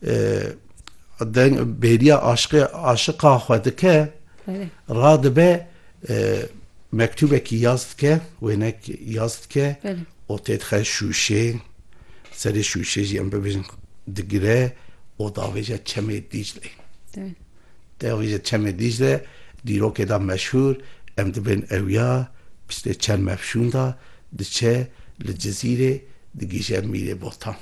Deng bêriya aşiqê aşiqa xwe dike radibe mektûbekî yaz dike wênek yaz dike û têdixe şûşê serê şûşê jî em bibêjin digire û davêje çemê Dîcleyê. Davêje çemê Dîcle dîrokê de meşhûr em dibên ewya piştê çend mefşûn de diçe li Cizîrê digihîje Mîrê Botan.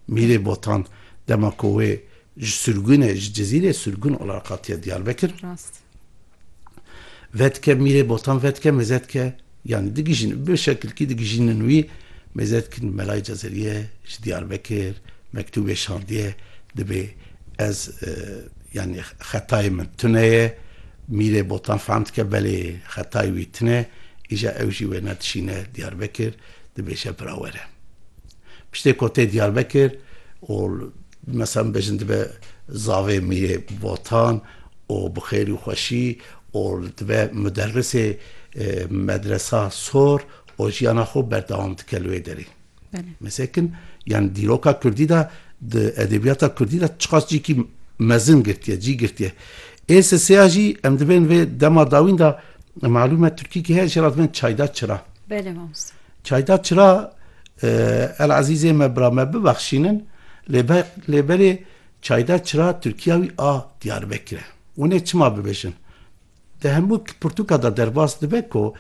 Mîrê Botan dema ku wê ji sirgûnê ji Cizîrê sirgûn ola re qatiye Diyarbekir. Rast. Vedike Mîrê Botan vedike mezetike yanî digijîn bi şekilkî digijînin wî mezetkin Melayê Cezeriye ji Diyarbekir mektûbê şandiye dibê ez yanî xetayê min tune ye. Mîrê Botan fehm dike belê xetayê wî tune îja ew jî wê nedişîne Diyarbekir dibêje bira were. Piştê ku tê Diyarbekir û meselem bêjin dibe zavê Mîrê Botan û bi xêrî û xweşî û dibe muderrisê medresa sor û jiyana xwe berdewam dike li wê derê. Mesekin yan dîroka Kurdî de di edebiyata Kurdî de çiqas cîkî mezin girtiye, cî girtiye. Ê silsêya jî em dibên vê dema dawîn de malûm e Tirkîkî heye jê re dibên çayda çira. Belê mamosta. Çayda çira El Ezîzê me bira me bibexşînin lê be lê berê çayda çira Tirkiya wî a Diyarbekir e. Hûn ê çima bibêjin? Di hemû pirtûka de derbas dibe ku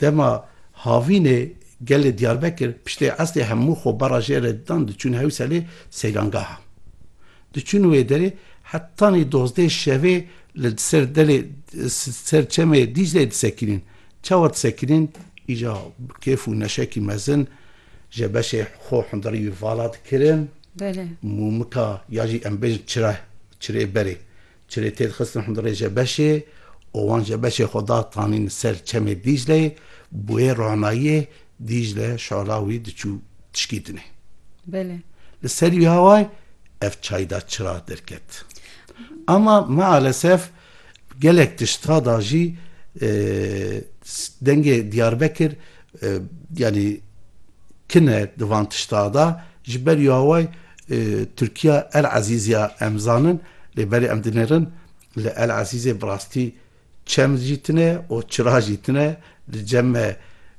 dema havînê gelê Diyarbekir piştê esrê hemû xwebara jê re didan diçûn Hewselê seyrangaha. Diçûn wê derê hetanî dozdeh şevê li ser delê ser çemê Dîcleyê disekînin. Çawa disekirîn, îca bi kêf û neşekî mezin je beşê xwe hundirî wî vala dikirin, mûmika ya jî em bêjin çira, çirê berê, çirê tê dixistin hundirê je beşê û wan je beşê xwe da tanîn li ser çemê Dîcleyê, bi wê ranayiyê Dîcle şala wî diçû tişkî dinê. Li serî wî awayî ev çayda çira derket. Ama mealesef Gelek tişta da jî dengê Diyarbekir yanî kin e di van tişta da. Ji ber ya we Tirkiya El Ezîz ya em zanin lê berê em dinêrin li El Ezîzê bi rastî çem jî tune û çira jî tune. Di cem me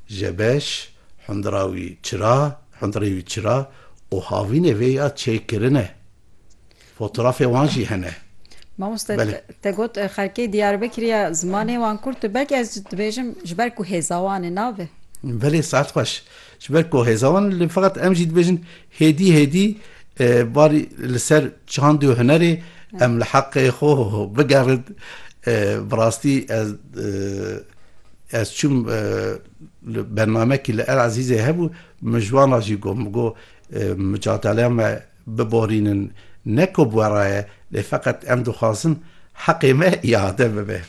Jebeş, Hundira wî Çira, Hundirê wî Çira û havînê vê ya çêkirin e. Fotorafê wan jî hene. Mamoste te got xelkê Diyarbekirê ya zimanê wan kurt e belkî ez dibêjim ji ber ku hêza wan e nabe. Belê saet xweş. Ji ber ku hêza wan e lê feqet em jî dibêjin hêdî hêdî barî li ser çand û hunerê em li heqê xwe bigerin. Bi rastî ez ez çûm li bernamekî li El Ezîzê hebû min ji wan re jî got min got micadaleya me biborînin ne ku bi we re ye lê feqet em dixwazin heqê me îade bibe.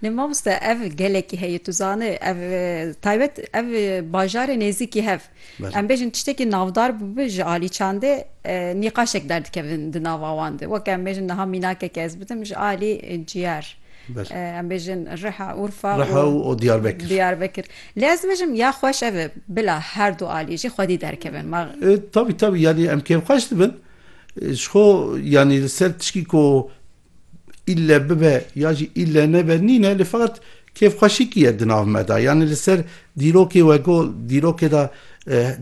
Lê mamoste ev gelekî heye tu zani ev taybet ev bajarê nêzîkî hev em bêjin tiştekî navdar bûbi ji alî çandê nîqaşek derdikevin di nava wan de weke em bêjin niha mînakeke ez bidim ji alî ciyar em bêjin riha urfa û diyarbekir. Lê ez dibêjim ya xweş ev e bila her du alî jî xwedî derkevin. Ma. Tavî tavî yanî em kêfxweş dibin ji xwe yanî li ser tişkî ku îlle bibe ya jî îlle nebe nîne lê feqet kêfxweşîkî ye di nav me de. Yanî li ser dîrokê we got dîrokê de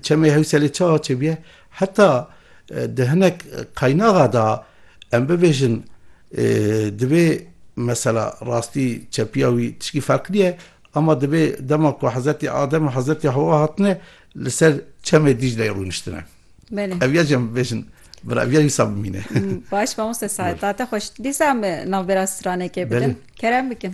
Çemê Hewselê çawa çêbûye heta di hinek qaynaxa de em bibêjin divê mesela rastî çepiya wî tişkî ferq nîye Ama divê dema ku Hezretî Adem û Hezretî Hewa hatine li ser çemê Dîcleyê rûniştine. Belê. Ev ya jî em bibêjin bir ev ya wisa bimîne. Baş mamoste sade. Tate xweş. Dîsa em navbera stranekê bidin. Belê. Kerem bikin.